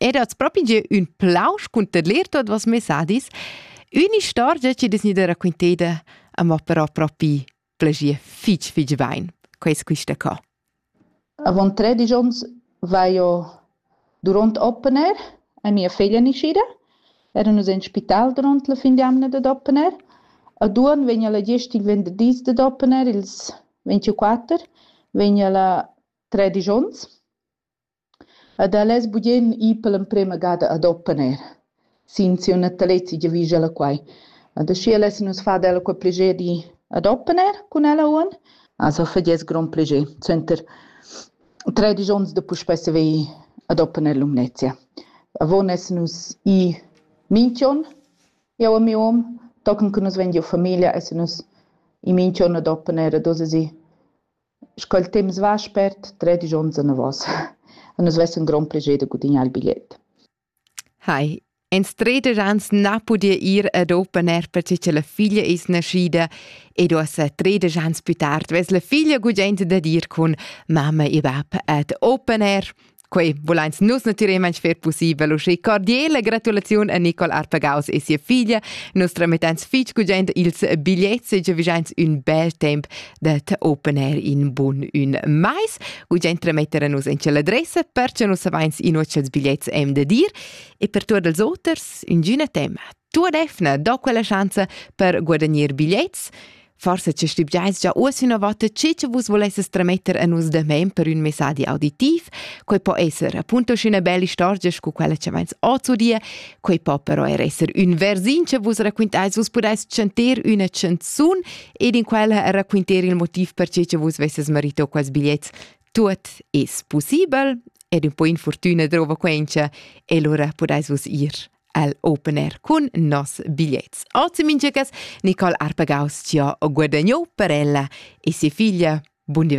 Ed has propi gieu ün plausch cunter leer tuot voss messadis, ün'istorgia chi dess gnüda raquinteda, amò però propi plagia fich fich bain, quais quista co. Avant tredisch ons vai io durant open air e mia figlia nascida. Era nus in spital durant la fin d'jamna dad open air. A Duon vegna la gest il venderdis dad open air, ils 24, vegna la tredisch ons. Ed el es bugen i per l'emprema gada ad opponer sin siu natalezi giavüscha ella quai. Ed aschia lessan nus far d'ella quei plascher di ad opponer cun ella on. Also fa gliez grond plascher. Suenter tredisch ons da puspei saver ad opponer Lumnezia. Avon essan nus i minch'on, eu e miu hom. Tochen che nus vegn giu famiglia essan nus i minch'on ad opponer ad hoz esi Sch'el temps va spert, tredisch onns anavos. E nus vess ün grond plascher da gudignar il bigliet. Hai, ins treder ans na pudia ir ad open air perche cha la figlia es naschida ed uossa treder ans plü tard vess la figlia gugent da dir cun mamma e bap ad open air. Quei vulein nus natüralment fer pussibel, uschè cordiale gratulaziun a Nicole Arpagaus e sia figlia. Nus tramettans fitg gugent ils bigliets e giavischeins ün bel temp det open air in bun ün mais. Gugent trametter a nus in l'adressa perche nus avains inuocciats bigliets em da dir e per tuot els oters ingüna tema. Tuot efna do quella schanza per guadagnar bigliets. Forse ci stibgiais già uoss üna vota chi che vus volesses trametter a nus demain per ün messadi auditiv. Quei po esser appunto schüna bella istorgia scu quella che vains ozu die, quei po però er esser ün versin che vus raquintais, vus pudais chanter üna chanzun ed in quella raquinter il motiv per che che vus vesses marito quels bigliets. Tuot es possibel ed un po infortüna drova quencha e lura pudais vus ir el open air cun nos bigliets. Ozi minchas Nicole Arpagaus ci ha guadagno per ella e si figlia. Buon divertimento.